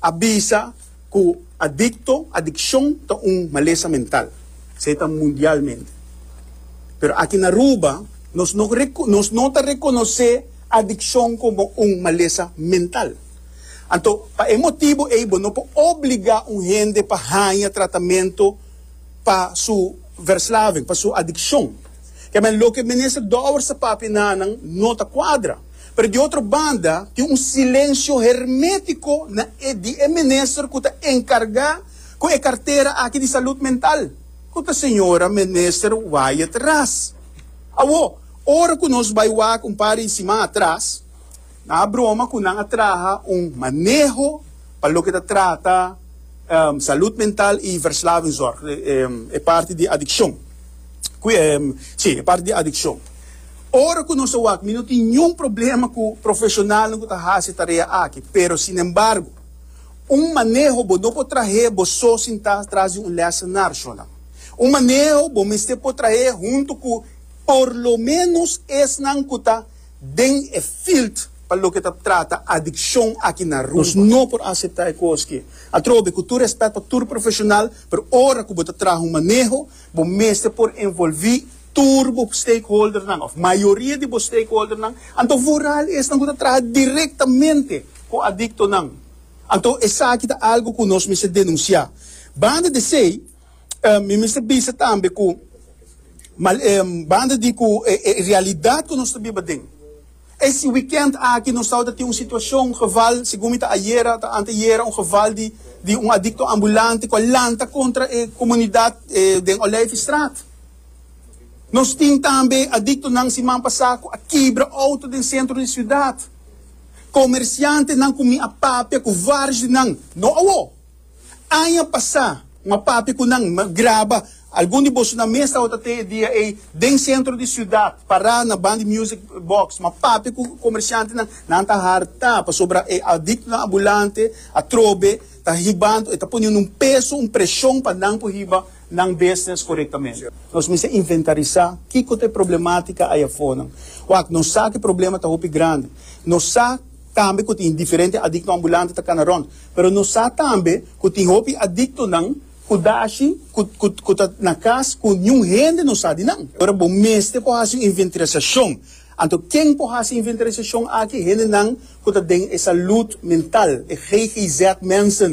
A bisa cu adicto, adiccion, ta un malesa mental. Esey ta mundialmente. Pero aki na Aruba nos no nos no ta reconoce adiccion como un malesa mental. Anto pa e motibo ey bo no por obliga un hende pa haya tratamento pa su verslaving, pa su adiccion. Kemey loke Minister Dowers a papia nanan no ta cuadra. Pero di otro banda tin un silensio hermetico na e di e minister cu ta encarga cu e cartera aki di salud mental, cu ta señora minister Wyatt Ras. Awo, ora cu nos bay wak un par di siman atras, nan a broma cu nan a traha un maneho pa loke ta trata salud mental y verslavingzorg, e parti di adiccion, cu e, si, e parti di adiccion. Ora ku nos a wak, mi no tin niun problema ku profeshonalnan ku ta hasi e tarea aki, pero sinembargo, un maneho bo no por trah'é bo so sin ta tras di un lèsenar, Sholam. Un maneho bo mester por trah'é huntu ku por lo ménos esnan ku ta den e field pa loke ta trata adikshon aki na Aruba. Nos no por aseptá e kos ke. Atrobe, ku tur rèspèt pa tur profeshonal, pero ora ku bo ta traha un maneho, bo mester por envolví, tur bo stakeholdernan of mayoria di bo stakeholdernan, anto vooral esnan ku ta traha direktamente ku adiktonan. Anto esaki ta algu ku nos mester denunsiá. Banda di esei, mi mester bisa tambe ku banda di ku e realidat ku nos ta biba den, E si wikènt aki nos tabata tin un situashon, un geval, segun mi ta ayera o ta anteayera, un geval di di un adikto ambulante ku a lanta kontra e komunidat den Olijfstraat. Nos tin tambe adiktonan siman pasá ku a kibra outo den sentro di siudat. Komersiantenan ku mi a papia ku vários di nan, no awo. Aña pasá, ma papia ku nan graba algun di boso nan mes tabata tin e dia ei den sentro di siudat, pará na ban di music box. Ma papia ku komershantenan, nan ta hartá pasobra e adiktonan ambulante atrobe ta hibando, e ta poniendo un peso, un preshon pa nan por hiba nan business korektamente. Nos mester inventarisá kiko ta e problematika ai afonan. Wak, nos sa ku e problema ta hopi grandi. Nos sa. tambe ku tin diferente adikto ambulante ta kana rònt, pero nos sa tambe ku tin hopi adiktonan ku dashi ku ku ku ta na kas ku niun hende no sa di nan. Ora bo mester por hasi un inventariasashon, anto ken por hasi e inventariasashon aki? Hendenan ku ta den e salùd mental, e GGZ-mensen,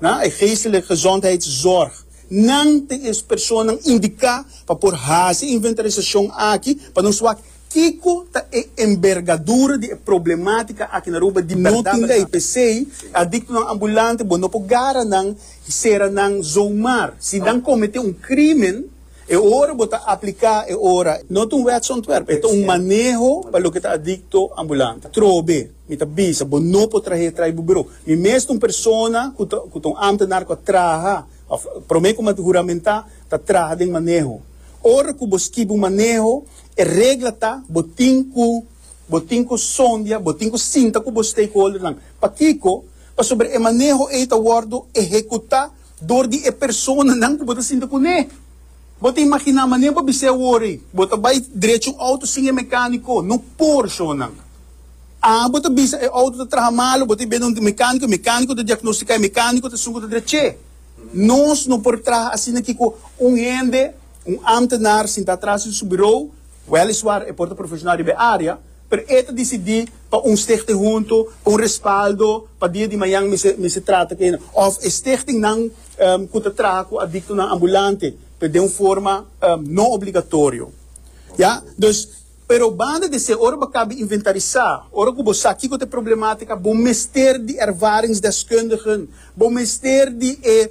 na, e Geestelijke Gezondheidszorg. Nan ta e personanan indiká pa por hasi e inventariasashon aki pa nos wak Kiko ta e enbergadura di e problematica aki na Aruba di berdad? No tin ley, p'esey adictonan ambulante bo no por gara nan y cera nan zomaar. Si nan comete un crimen, e ora bo ta aplica e ora. No ta un wetsontwerp, e ta un maneho pa loke ta adicto ambulante. Trobe, mi ta bisa, bo no por trahe tray bo bureau. Mi mes ta un persona cu ta cu ta un ambtenaar cu a traha of prome como a juramenta ta traha den maneho. Ora cu bo skibi un maneho, E regla ta bo tin ku bo tin ku sondia, bo tin ku sinta ku bo stakeholdernan. Pakiko? Pasobra e maneho ei ta wòrdu ehekutá dor di e personanan ku bo ta sinta kuné. Bo ta imaginá manera bo bis'é awor ei, bo ta bai drechi un outo sin e mekániko? No por, shownan. A Bo ta bisa e outo ta traha malu, bo ta biaha donde un mekániko, e mekániko ta diagnostiká, e mekániko ta sungu ta drech'é. Nos no por traha asina ki ku un hende. Un ámtenar sintá atras di su birou, wèliswar e por ta profeshonal riba e área, pero e ta disidí pa un stichting huntu pa un respaldo pa dia di mañan mester trata ku enda òf e stichtingnan ku ta traha ku adiktonan ambulante pero den un forma no obligatorio. Ya. Dus, pero banda di esei, ora bo a kabe inventarisá, ora ku bo sa kiko ta e problemátika, bo mester di ervaringsdeskundigen, bo mester di e.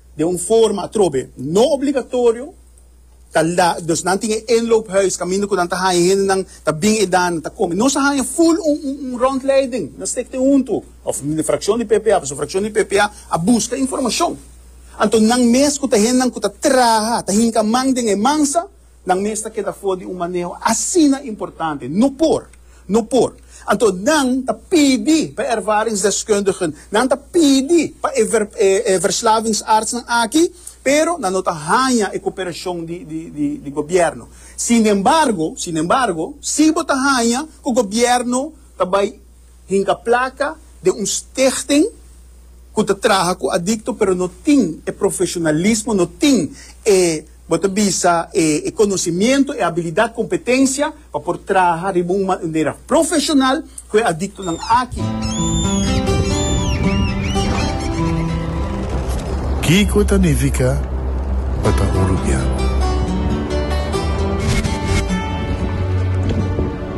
Den un forma atrobe no obligatorio, ta la, nos nan tin e inloophuis kaminda ku nan ta haña hendenan ta bin edan nan ta kome. Nos a haña ful un un un rondleiding, nan stik tin huntu òf un frakshon di PPA pasobra frakshon di PPA a buska informashon. Anto nan mes ku ta hendenan ku ta traha, ta hinka man den e mansa, Nan mes ta keda for di un maneho asina importante. No por! No por! Anto nan ta pidi pa e ervaringsdeskundigen, nan ta pidi pa e e verslavingsartsnan aki, pero nan no ta haña e koperashon di di di di gobièrnu. Sinembargo, sinembargo, si bo ta haña ku gobièrnu ta bai. Hinka plaka den un stichting ku ta traha ku adikto pero no tin e profeshonalismo, no tin e, bo ta bisa, e konosimiento, e abilidat, kompetensia pa por traha riba un manera profeshonal ku e adiktonan aki. Kiko ta nifiká pa ta hulubiá?